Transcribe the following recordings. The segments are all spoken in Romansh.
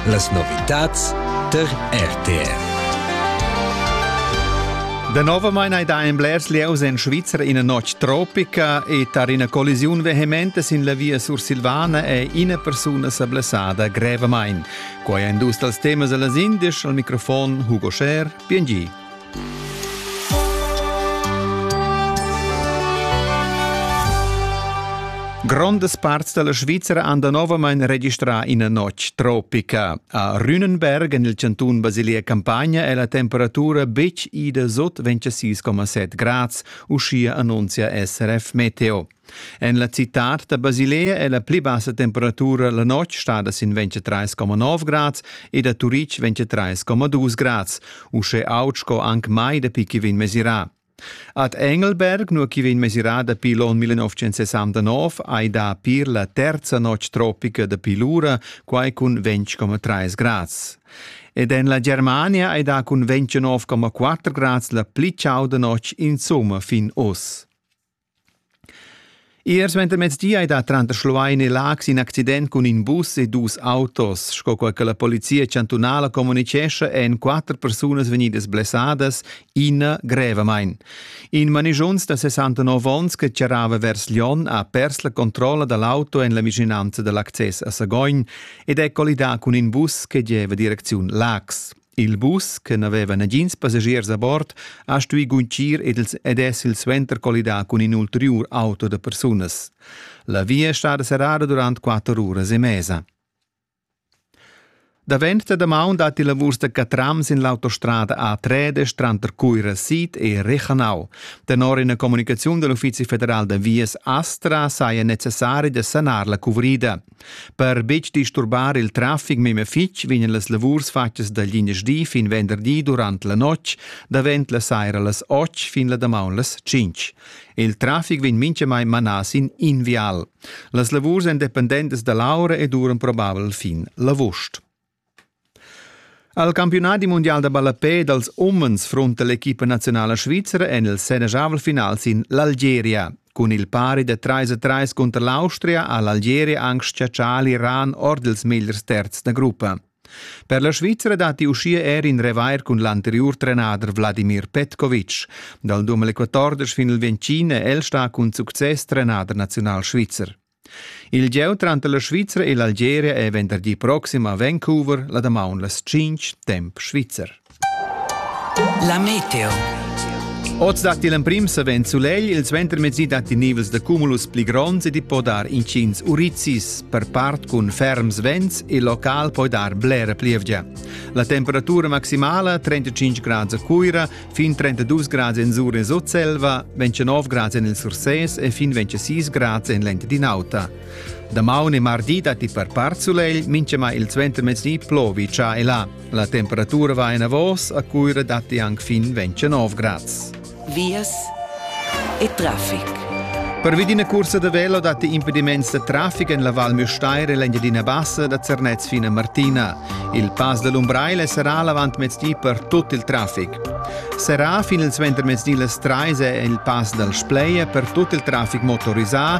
Las novitads tar RTR. Danovamein ei da en blers lieus en Svizra ina notg tropica e tar ina collisiun vehementa sin la via sursilvana è ina persuna sa blessada grevamain. Quai è in dus dals temas dals indisch al microfon Hugo Scher, PNG. Grondas parts dalla Svizra han danovamein registrà ina notg tropica. A Rühnenberg, en il cantun Basilia-Campagna, è la temperatura betg ida sot 26,7 grads, uschia annunzia SRF Meteo. En la citad da Basilea è la pli bassa temperatura la notg stada sin 23,9 grads e da Turitg 23,2 grads, uschè aut sco anc mai dapi che vegn mesirà. Ad Engelberg, nua che vegn mesirà dapi l'onn 1969, hai dà pir la terza notg tropica dapi l'ura, quai cun 20,3 grads. Ed en la Germania hai dà cun 29,4 grads la pli chauda notg insomma fin oz. Ier suentermezdi ei dat tranter Schluein e Laax in accident cun in bus e dus autos. Sco quei che la polizia chantunala communicescha, ein quatter persunas vegnidas blessadas, ina grevamain. In manigiuns da 69 onns che charrava vers Lyon ha pers la controlla dall'auto en la vischinanza dall'access a Sagogn ed è collidà cun in bus che gieva direcziun Laax. Il bus, che n'aveva nagins passagiers a bord, ha stuì guntgir ed, els ed è silsuenter collidà cun in ulteriur auto da persunas. La via è stada serrada durant quatter uras e mesa. Davent da damaun datti lavurs da catrams in l'autostrada A3 tranter Cuira Sid e Rechanau. Tenor ina comunicaziun da l'Uffizi federal da vias Astra saja necessari da sanar la cuvrida. Per betg disturbar il traffic memia fitg vegnan las lavurs fatgas da linasdi fin venderdi durant la notg, davent la saira las 8 fin la damaun las 5. Il traffic vegn mintgamai manà sin in vial. Las lavurs èn dependentas da l'aura e duran probabel fin l'avust. Al campiunadi mundial da ballapè dals umens frunta l'equipa naziunala svizra en il senajavel final sin l'Algeria. Cun il pari da 3-3 cunter l'Austria ha l'Algeria anc schiaccià l'Iran ord ils megliers terzs da gruppa. Per la Svizra datti uschia er in revair cun l'anteriur trenader Vladimir Petkovic. Dal 2014 fin il 2020 è el stà cun success trenader naziunal svizzer. Il gieu tranter la Svizra e l'Algeria è venderdi proxim a Vancouver la damaun las tschintg temp svizzer. La meteo. Oz datti l'emprim savens sulegl, il suentermezdi datti nivels da cumulus pli gronds ed i po dar intgins urizis, per part cun ferms vents, il local poi dar blera plievgia. La temperatura maximala 35 grad a Cuira, Fin 32 grads en sur en Sutselva, 29 grads en il Sursès e fin 26 grads en l'Engiadin'Auta. Damaun e mardi datti per part sulegl, minchema il suentermezdi plovi già e là. La temperatura va en avos, a Cuira datti anche fin 29 grads. Vias e traffic. Pervi d'ina cursa da velo datti impediments da traffic en la Val Müstair e l'Engiadina Bassa da Zernez fin a Martina. Il pass da l'Umbrail sarà l'avantmezdi per tut il traffic. Serrà fin il suentermezdi las 3 è il pass dal Spleia per tut il traffic motorisà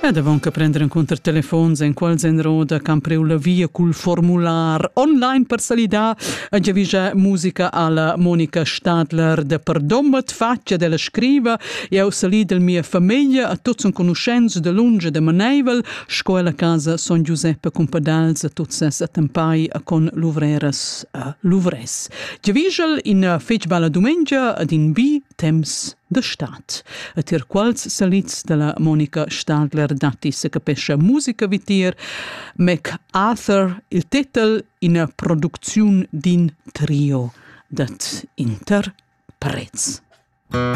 Ed avon che prender encunter telefons enquals enroda can priu la via cul formular online per salidar a giavischar musica alla Monica Stadler de Perdommet faccia della scriva eu salid el mia famiglia a tuts enconuschents de lunge de Maneivel sco la casa Son Giuseppe Compadals a tuts ses attempai a con luvreras a Luvres. Giavischel in fetg bella dumengia ad in bi temps da stad. E tier quals salids dalla Monica Stadler datti se capescha musica vitier, Mac Arthur il tetel ina producziun d'in trio dat interprets. Mm.